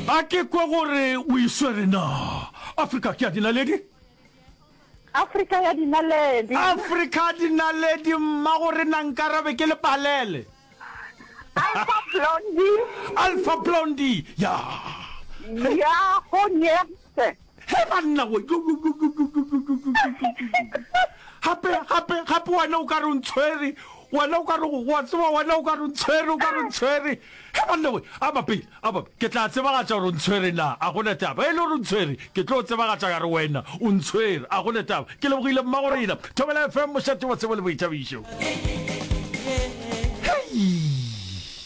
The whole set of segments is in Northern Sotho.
a ke kwe gore o iswere na afrika ke ya dinaledi afrika ya dinaledi afrika ya dinaledi mma gore na nkarabe ke lepalele alpha blondi alpha blondi ya ya go ne He banna wo gape gape gape wena o ka re ntshwere wena o ka re wa tseba wena o ka re ntshwere o ka re ntshwere he banna we a bapele a bape ke tla tsebagatša gore ntshwere na a gona taba e le gore ntshwere ke tlo tsebagatša ka re wena o ntshwere a gona taba ke lebogile mma go rena thobela fm mošate wa tsebo le boithabišo hei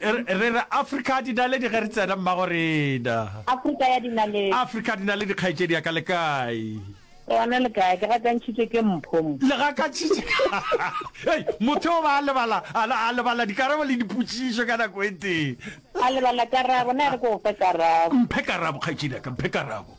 re re afrika dinaledi ge re tsena mmago rena afrika ya dinaledi afrika dinaledi kgaetšedi ya ka le kae gona le kae ke gakantšhitše ke mphomo le gakantšhitše ei motho o ba a lebala a lebala dikarabo le dipotšišo ka nako e teng a lebala karabo na re ko go fe karabo mphe karabo kgaetšedi ya ka mphe karabo